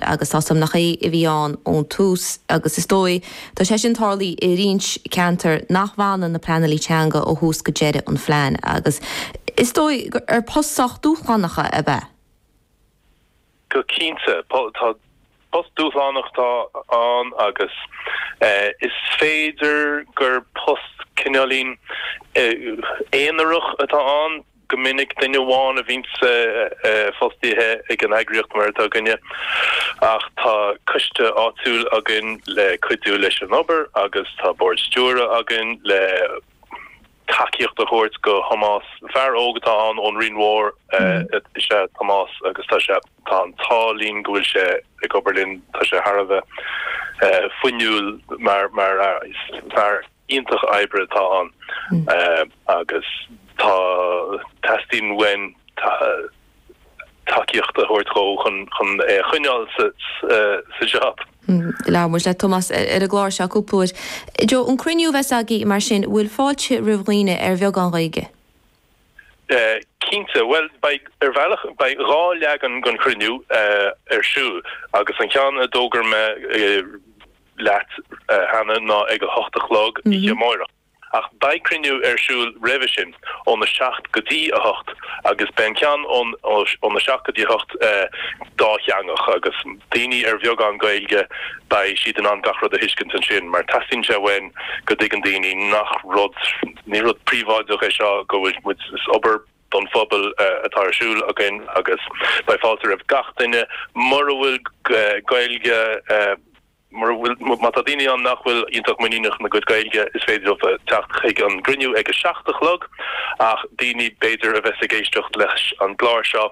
agus tá súm nach é a bhí ann ón tús, agus is dóigh tá sé sin tarlaithe i roinnt ceantar nach bhfanann na pleanálaithe teanga ó thús go deireadh an phlean, agus is dóigh gur post sách dúshlánach a bheadh. Go cinnte, post dúshlánach atá ann, agus is féidir gur post cineáilín aonarach atá ann. Go minic, duine amháin a bhíonns fostaithe ag an eagraíocht, mar atá againne, ach tá coiste áitiúil againn le cuidiú leis an obair agus tá bord stiúrtha againn le tacaíocht a thabhairt do Thomás. Fear óg atá ann ón Rinn Mhór is ea Tomás agus tá sé, tá an t-ádh linn go bhfuil sé ag obair linn, tá sé thar a bheith fuinniúil mar fhear. iontach, oibrí atá ann agus tá teastaíonn uainn tacaíocht a thabhairt dhó chun é a choinneáil sa jab. Labhair muid le Tomás ar an gclár seo cúpla uair. Joe, an cruinniú a bheas agaibh mar sin, bhfuil fáilte roimh dhaoine ar bheagán Gaeilge? Cinnte, bhuel beidh, ar bhealach, beidh dhá leagan den chruinniú ar siúl agus an ceann a d'fhógair mé, leat cheana ná ag a hocht a chlog oíche amárach. Ach beidh cruinniú ar siúl roimhe sin, ón 7 go dtí 8, agus beidh an ceann ón 7 go dtí 8 dátheangach, agus daoine ar bheagán Gaeilge, beidh siad in ann gach rud a thuiscint ansin, mar teastaíonn uainn go dtuigeann daoine nach rud, ní rud príobháideach é seo, go bhfuil muid, is obair. don phobal atá ar siúl againn agus beidh fáilte roimh gach duine mura bhfuil Gaeilge mura bhfuil má tá daoine ann nach bhfuil iontach muiníneach ina gcuid Gaeilge is féidir leo teacht chuig an gcruinniú ag a seacht a chlog ach daoine b'fhéidir a bheas ag éisteacht leis an gclár seo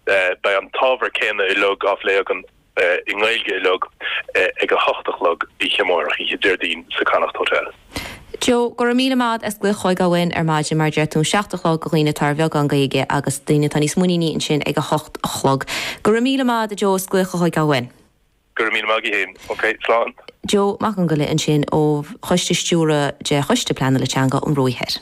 beidh an t-ábhar céanna uilig á phlé againn i nGaeilge uilig ag a hocht a chlog oíche amárach, oíche Déardaoin, sa Connacht Hotel. Joe, Go raibh míle maith as glaoch chugainn ar maidin mar deir tú an seacht a chlog do dhaoine atá ar bheagán Gaeilge agus daoine atá níos muiníní ansin ag a hocht a chlog. Go raibh míle maith ad Joe as glaoch chugainn. Go raibh míle maith agat fhéin. OK, slán. Joe Mac Fhiongaile ansin ó Choiste Stiúrtha de Choiste Pleanála Teanga an Bhruachaigh.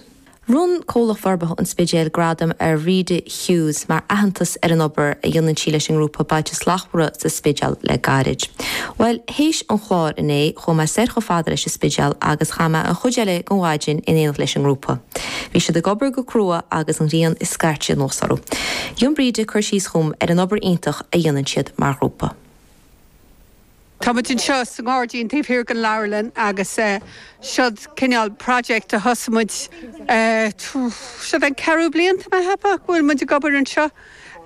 Bhronn Comhlacht Forbartha an Spidéil gradam ar Bhríde Hughes mar aitheantas ar an obair a dhéanann sí leis an ngrúpa Bailte Slachtmhara sa Spidéal le gairid. Bhuel, théis an chláir inné, chuaigh mé soir chomh fada leis an Spidéal agus chaith mé an chuid eile den mhaidin in éineacht leis an ngrúpa. Bhí siad ag obair go crua agus an ghrian ag scairteadh anuas orthu. Rinne Bríde cur síos dhom ar an obair iontach a dhéanann siad mar ghrúpa. Tá muid anseo sa ngairdín taobh thiar den leabharlann agus siod cineál project a thosaigh muid siod an ceathrú bliain atá mé a cheapadh go bhfuil muid ag obair anseo.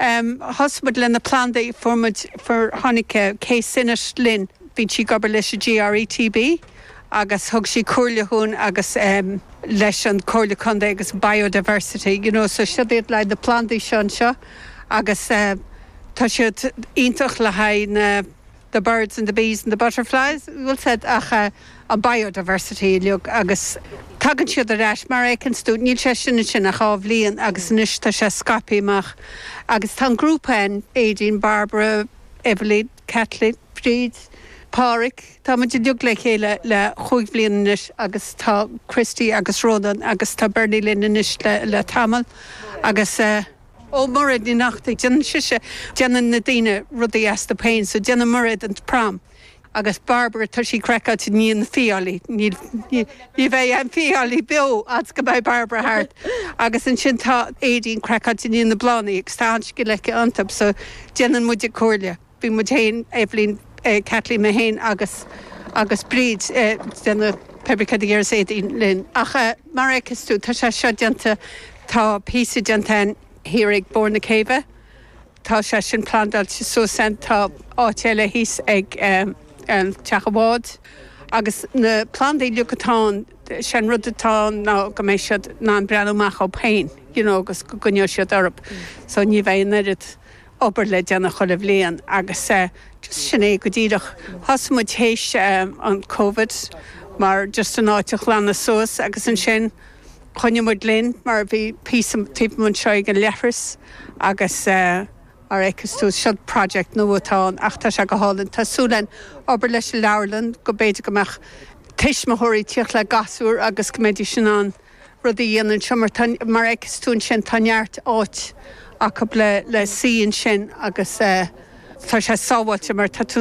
Thosaigh muid le na plandaí, fuair muid, fuair, tháinig Kay Sinnott linn, bíonn sí ag obair leis an GRETB agus thug sí comhairle dhúinn agus leis an Comhairle Contae agus Biodiversity, you know, so siod iad na plandaí seo anseo. agus tá siad iontach le haghaidh na the birds and the bees and the butterflies, bhfuil a fhios agat an biodiversity uilig agus tagann siad ar ais mar a fheiceann tú, níl sé sin ansin ach dhá bhliain agus anois tá sé scaipthí amach agus tá an grúpa ann, Aideen, Barbara, Evelyn, Caitlín, Bríd, Páraic, tá muid uiliug le chéile le chúig bhliain anois agus tá Christy agus Rónán agus tá Bernie linn anois le tamall agus eh Ó, Mairéad Ní Neachtaigh, déanann sise, déanann na daoine rudaí astu féin so déanann Mairéad an pram agus Barbara tá sí craiceáilte i ndiaidh na fiailí, níl, Ní bheidh aon fhiailí beo fhad 's go mbeidh Barbara thart, agus ansin tá Aideen, craiceáilte i ndiaidh na bplandaí, agus tá an-scil aici iontub, so déanann muid a comhairle. Bíonn muid féin, Eibhlín, Kathleen, mé féin agus agus Bríd ag déanamh fabricate gear is Aideen linn. Ach mar a fheiceas tú, tá sé seo déanta, tá píosa déanta ann thiar ag barr na céibhe, Tá sé sin plandáilte suas ann. Tá áit eile thíos ag teach an bháid. Agus na plandaí uilig atá ann, sé an rud atá ann ná go mbeidh siad in ann breathnú amach orthu féin, you know, agus go gcoinneoidh siad orthu. So ní bheidh an oiread obair le déanamh chuile bhliain agus just sin é go díreach. Thosaigh muid théis an Covid mar just an áit a ghlanadh suas agus ansin, Choinnigh muid linn mar bhí muid taobh anseo ag an leithreas agus mar a fheiceas tú, seo project nua atá ann ach tá sé go hálainn. Tá súil againn obair leis an leabharlann go mb'fhéidir go mbeadh tuismitheoirí ag tíocht le gasúir agus go mbeidís in ann rudaí a dhéanamh anseo mar tá, mar a fheiceas tú ansin, tá neart áit acu le suí ansin agus tá sé sábháilte mar tá tú